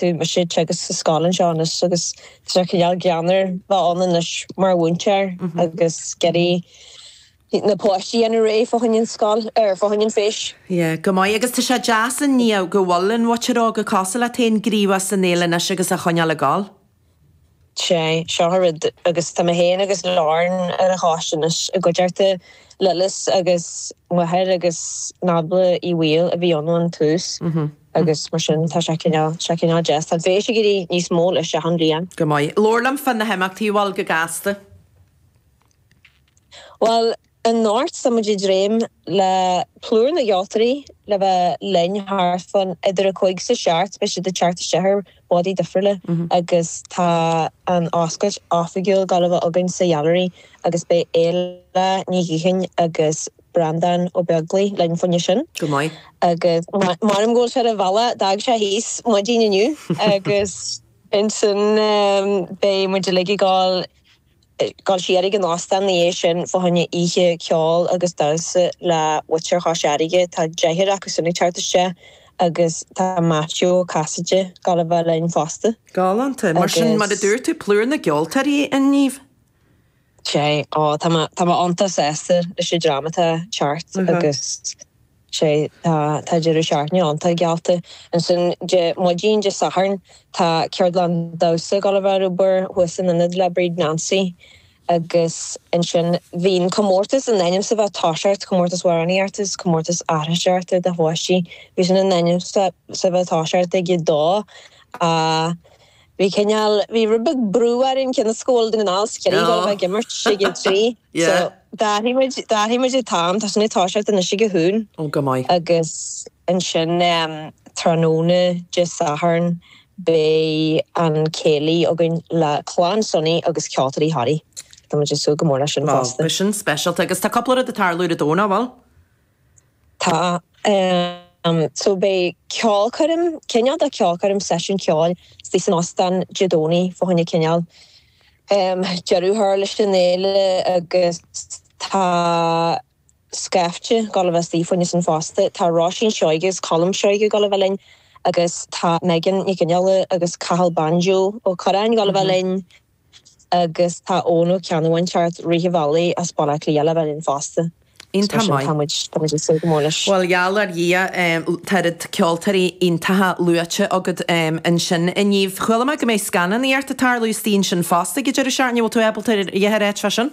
tá mise ag teagasc sa scoil anseo anois agus tá sé cineál greannmhar bheith ann anois mar mhúinteoir agus ag iarraidh na páistí a dhéanamh réidh fá choinne an scoil, er, fá choinne an féis. Ie, go maith. Agus tá sé deas a Niamh go bhfuil an mhuintir óg cosúil leat féin gníomhach san fhéile anois agus á choinneáil ag gabháil. Sea, seo an rud, agus tá mé féin agus Lauren ar an choiste anois i gcuideachta Lillis agus Mháire agus Nábla Uí Bhaoill a bhí ann ón tús agus mar sin tá sé cineál, sé cineál deas. Tá an féis ag éirí níos mó leis achan bhliain. Go maith. Labhair liom fá na himeachtaí a bhfuil go gasta. Bhuel, Anocht tá muid ag dréim le plúr na gceoltóirí le bheith linn thart fán idir a cúig is a seacht beidh siad ag teacht isteach ar bádaí difriúla agus tá an oscailt oifigiúil ag gabháil a bheith againn sa Ghealaraí agus beidh Éile Ní Ghiothain agus Breandán Ó Beaglaoich linn fá choinne sin. Go maith. Agus mairim go bhfuil sé ar a bhealach d'fhág sé thíos maidin inniu agus ansin beidh muid uilig ag gabháil. Gabháil siar ag an óstán na dhiaidh sin fá choinne oíche ceoil agus damhsa le muintir Chois Fharraige. Tá deichniúr acu sin ag teacht isteach agus tá Maitiú Ó Casaide, ag gabháil a bheith linn fosta. Galánta, mar sin, mar a dúirt tú, plúr na gceoltóirí a Niamh. Sea, ó, tá mé iontach sásta leis an dream atá ag teacht, agus. sé. Tá deireadh seachtaine iontach geallta ansin Dé maidin, Dé Sathairn tá ceardlann damhsa ag gabháil a bheith ar obair thuas san Ionad le Bríd Nancy agus ansin bhí an comórtas in ainm is a bheith ag toiseacht, comórtas amhránaíochta is comórtas aithriseoireachta do pháistí. Bhí sin in ainm is a bheith ag toiseacht ag a dó a. Bhí cineál, bhí rud beag brú orainn cionn is go bhfuil Dún na nGall is Ciarraí ag dul a bheith ag imirt ag a trí so d'athrigh muid, d'athrigh muid an t-am, tá sin ag toiseacht anois ag a haon Oh go maith. agus ansin em tráthnóna Dé Sathairn beidh an céilí againn le Clann Sonny agus Ceoltóirí Thoraí. Tá muid ag súil go mór leis sin fosta. Bhuel beidh sin speisialta agus tá cúpla rud ag tarlú ar an Domhnach, an bhfuil? Tá. So beidh ceolchoirm, cineál de cheolchoirm, seisiún ceoil istigh san Ostán Dé Domhnaigh fá choinne cineál deireadh a chur leis an fhéile agus tá scaifte ag gabháil a bheith istigh fá choinne sin fosta. Tá Róisín Seoighe is Colm Seoighe ag gabháil a bheith linn agus tá Megan Nic Fhionnghaile agus Cathal Banjo Ó Curráin ag gabháil a bheith linn. Agus tá Eoghan Ó Ceannabháin thart, Ríthe Bhealaí as Baile Átha Cliath ag gabháil a bheith linn fosta. Is mar sin, tá muid ag súil go mór leis. Bhuel, gheall ar Dhia, tá oiread ceoltóirí iontacha luaite agat ansin a Niamh. Chuala mé go mbeidh scannánaíocht ag tarlú istigh ansin fosta ag an deireadh seachtaine. An bhfuil tú ábalta a dhath a ráit faoi sin?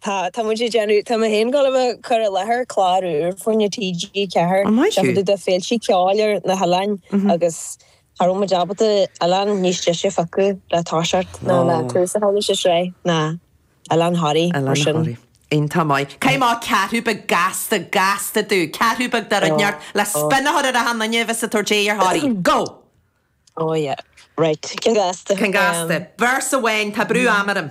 Tá, tá muid ag déanamh, tá mé féin ag gabháil a bheith ag cur i láthair clár úr fá choinne TG4, An maith thú! sraith de féilte ceoil ar na hoileáin agus cha raibh muid ábalta oileán níos deise a phiocadh le toiseacht ná le tús a chur leis an sraith ná Oileán Thoraí mar sin. Oileán Thoraí, iontach maith. Caith amach ceathrú beag gasta, gasta dúinn, ceathrú beag de rud inteacht le spionnadh a chur ar achan nduine a bheas ag tabhairt aghaidh ar Thoraí. Go! Oh yeah, right, ceann gasta? Ceann gasta. Véarsa amháin, tá brú am orm.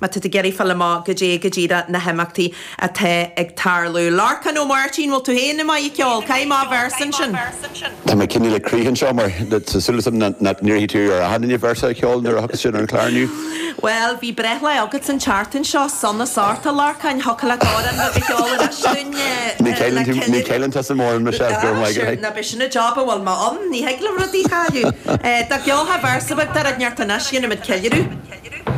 Má tá tú ag iarraidh fáil amach goidé go díreach na himeachtaí atá ag tarlú. Lorcán Ó Máirtín, Bhfuil tú féin maith ag ceol? Caith amach véarsa ansin. Tá mé cineál ar crith anseo mar tá súil agam nach n-iarrfaidh tú ar achan duine véarsa a cheol nuair a thiocfas siad ar an chlár inniu. Bhuel, bhí breithlá agat an tseachtain seo, sona sásta, a Lorcáin, thiocfadh leat amhrán beag a cheol anois dúinn le cinneadh? Ní cheolann tusa mórán mise, go raibh maith agat. Ná b'shin an jab a bhfuil mé ann, ní thig liom rudaí a chailleadh. Dá gceolfá véarsa beag de rud inteacht anois, dhéanfadh muid ceiliúradh.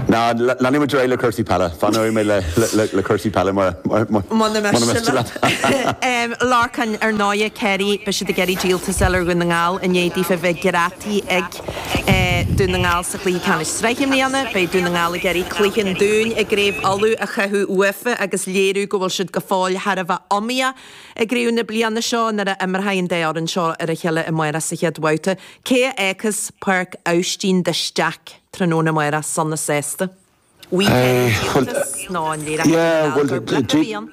No, leanfaidh muid ar aghaidh le cúrsaí peile. Fanóidh mé le cúrsaí peile mura miste leat. Lorcán, Ar ndóighe, Ciarraí, beidh siad ag iarraidh díoltas a fháil ar Dhún na nGall i ndiaidh daofa bheith greadtaí ag Dún na nGall sa Chluiche Ceannais Sraithe i mbliana. Beidh Dún na nGall ag iarraidh cluiche an Dúin i gCraobh Uladh a chaitheamh uafa agus léiriú go bhfuil siad go fóill thar a bheith iomaíoch i gcraobh na bliana seo nuair a imreoidh an dá fhoireann seo ar a chéile amárach sa chéad bhabhta. Cé a fhágfas Páirc Aibhistín de Staic? Tráthnóna amárach sona sásta. An é, díoltas nó an léireoidh Dún na nGall gur blip a bhí ann?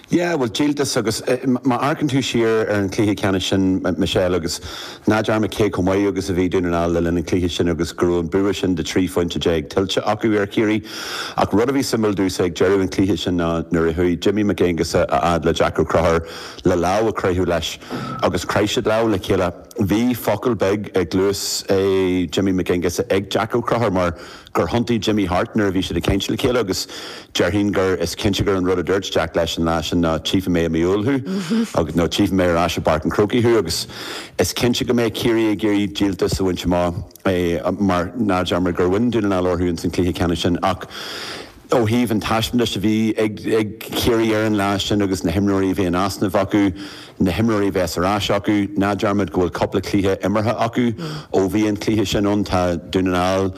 Yeah, bhuel, díoltas agus má amharcann tú siar ar an chluiche ceannais sin, Michelle, agus ná dearmad cé chomh maith agus a bhí Dún na nGall le linn an chluiche sin agus go raibh an bua sin de 13 phointe tuillte acu ar Chiarraí. Ach rud a bhí suimiúil domhsa ag deireadh an chluiche sin ná nuair a chuaigh Jimmy Mac Aonghasa a fhad le Jack Ó Conchúir le lámh a chroitheadh leis agus chraith siad lámh le chéile. Bhí focal beag i gcluas eh Jimmy Mac Aonghasa ag Jack Ó Conchúir mar gur thiontaigh Jimmy thart nuair a bhí siad ag caint le chéile agus déarfainn gur is cinnte gur an rud a dúirt Jack leis an lá sin ná tchífidh mé i mí Iúil thú agus nó tchífidh mé ar ais i bPáirc an Chrócaigh thú agus is cinnte go mbeidh Ciarraí ag iarraidh díoltas a bhaint amach mar ná dearmad gur bhain Dún na nGall orthu ins an chluiche ceannais sin ach Ó thaobh an taispeántais a bhí ag Ciarraí ar an lá sin agus na himreoirí a bhí in easnamh acu, na himreoirí a bheas ar ais acu, ná dearmad go bhfuil cúpla cluiche imeartha acu ó bhí an cluiche sin ann. Tá Dún na nGall,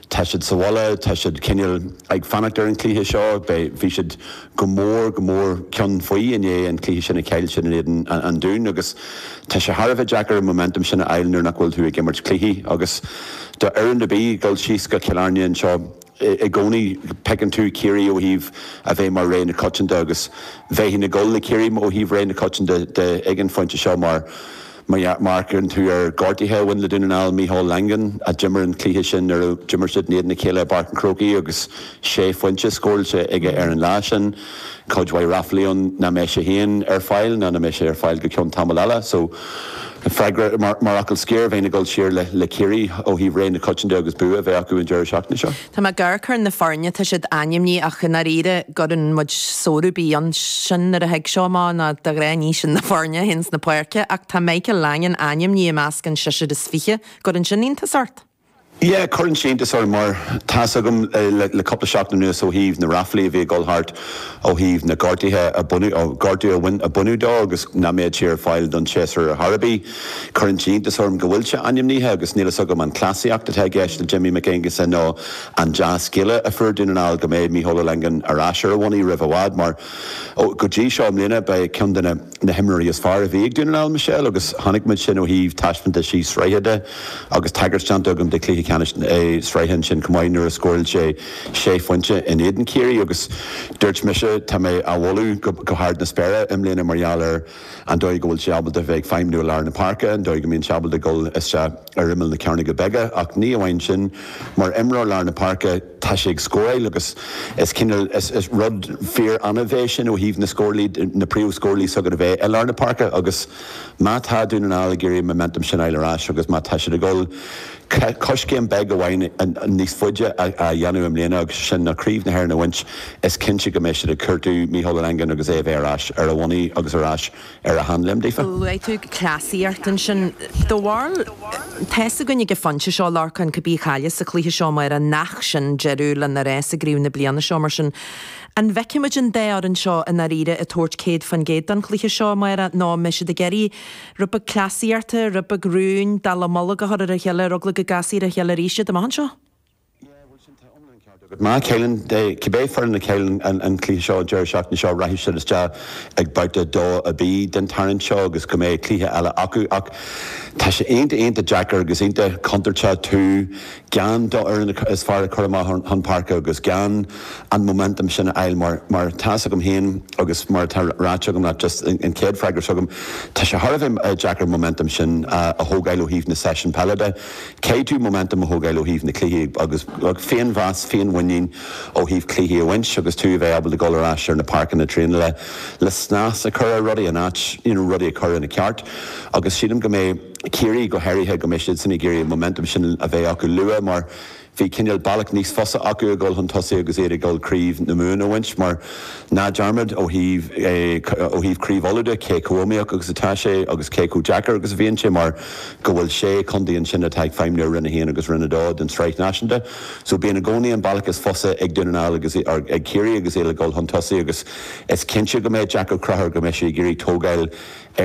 tá siad sa bhaile, tá siad cineál ag fanacht ar an chluiche seo. Beidh, bhí siad go mór, go mór cionn faoi i ndiaidh an chluiche sin a chaill siad in éadan an Dúin agus tá sé thar a bheith deacair an momentum sin a fháil nuair nach bhfuil tú ag imirt cluichí agus do fhoireann ar bith dul síos go Cill Airne anseo i gcónaí feiceann tú Ciarraí ó thaobh a bheith mar rogha na coitianta agus bheinn ag gabháil le Ciarraí ó thaobh rogha na coitianta de ag an phointe seo má amharcann tú ar ghortuithe a bhain le Dún na nGall, Micheál Langan a d'imir an cluiche sin nuair a d'imir siad in éadan a chéile i bPáirc an Chrócaigh agus sé phointe scóráilte aige ar an lá sin. cuid mhaith ráflaí ann nach mbeidh sé féin ar fáil ná nach mbeidh sé ar fáil go cionn tamaill eile so freagra mar fhocal scoir bheinn ag dul thiar le Ciarraí ó thaobh rogha na coitianta de agus bua a bheith acu an deireadh seachtaine seo. Tá mé ag amharc ar na foirne tá siad ainmnithe ach i ndáiríre an gcuireann muid sonrú ar bith ann sin nuair a thig seo amach nó de ghnáth ní sin na foirne a théann chun na páirce ach tá Michael Langan ainmnithe i measc an tseisir is fiche an gcuireann sin iontas ort? Yeah, cuireann sé iontas orm mar tá's agam le cúpla seachtain anuas ó thaobh na ráflaí a bhí ag dul thart ó thaobh na gortuithe a baineadh, gortú a bhain, a baineadh dó agus nach mbeadh sé ar fáil don séasúr ar chor ar bith. Cuireann sé iontas orm go bhfuil sé ainmnithe agus níl fhios agam an cleasaíocht atá i gceist le Jim Mac Aonghusa nó an dea-scéala a fuair Dún na nGall go mbeidh Micheál Langan ar ais ar a bhonnaí roimh i bhfad mar go dtí seo i mbliana ba é cionn de na na himreoirí is fearr a bhí ag Dún na nGall, Michelle, agus chonaic muid sin ó thaobh taispeántaisí sraithe de agus tagairt déanta agam do Chluiche Ceannais na Sraithe ansin chomh maith nuair a scóráil sé sé phointe in éadan Ciarraí agus dúirt mise tá mé á mholadh go hard na spéire i mbliana mar gheall ar an dóigh go bhfuil sé ábalta bheith ag feidhmniú i lár na páirce, an dóigh go mbíonn sé ábalta dul isteach ar imeall na cearnóga beaga ach ní amháin sin mar imreoir lár na páirce, Tá sé ag scóráil agus is cineál, is rud fíor annamh é sin ó thaobh na scórálaithe, na príomhscórálaithe s'agat a bheith i lár na páirce agus má tá Dún na nGall ag iarraidh an momentum sin a fháil ar ais agus má tá siad ag gabháil coiscéim beag amháin níos faide á dhéanamh i mbliana agus sin ná Craobh na hÉireann a bhaint is cinnte go mbeidh siad ag cuartú Micheál Langan agus é a bheith ar ais ar a bhonnaí agus ar ais ar a sheanléim daofa. Luaigh tú cleasaíocht ansin. Do bharúil, tá fhios againn ag an phointe seo, Lorcán, cibé a chailleas an cluiche seo amárach, nach sin deireadh lena rás i gcraobh na bliana seo mar sin. An bhfeicfimid an dá fhoireann seo i ndáiríre ag tabhairt céad faoin gcéad don chluiche seo amárach, nó an mbeidh siad ag iarraidh rud beag cleasaíochta, rud beag rúin, dallamullóg a chur ar a chéile, ar eagla go gcasfaí ar a chéile arís iad amach anseo? Yeah, bhuel sin, tá iomlán ceart agat. Má chailleann, cibé foireann a chailleann an cluiche seo deireadh seachtaine seo, rachaidh siad isteach ag babhta 2AB den tarraingt seo agus go mbeidh cluiche eile acu. Ach tá sé iontach, iontach deacair agus iontach contúirteach tú gan do fhoireann is fearr a chur amach chun páirce agus gan an momentum sin a fháil mar, mar tá 'fhios agam féin agus mar atá ráite agam leat, just an chéad freagra seo agam, tá sé thar a bheith deacair an momentum sin a thógáil ó thaobh na seisiún peile de. Caithfidh tú momentum a thógáil ó thaobh na cluichí agus féinmheas, féinmhuinín ó thaobh cluichí a bhaint agus tú a bheith ábalta dul ar ais ar na páirceanna traenála le snas a chur ar rudaí, an áit, you know rudaí a chur ina ceart agus sílim go mbeidh Ciarraí go háirithe, go mbeidh siad sin ag iarraidh an momentum sin a bheith acu luath mar bhí cineál bealach níos fusa acu a dhul chun tosaigh agus iad ag dul Craobh na Mumhan a bhaint mar ná dearmad ó thaobh, eh, ó thaobh Craobh Uladh de cé chomh iomaíoch agus atá sé agus cé chomh deacair agus a bhíonn sé mar. go bhfuil sé contae ansin atá ag feidhmiú i Roinn 1 agus Roinn 2 den tSraith Náisiúnta. So bíonn i gcónaí an bealach is fusa ag Dún na nGall agus í, or ag Ciarraí agus iad ag dul chun tosaigh agus is cinnte go mbeidh Jack Ó Conchúir, go mbeidh sé ag iarraidh tógáil ar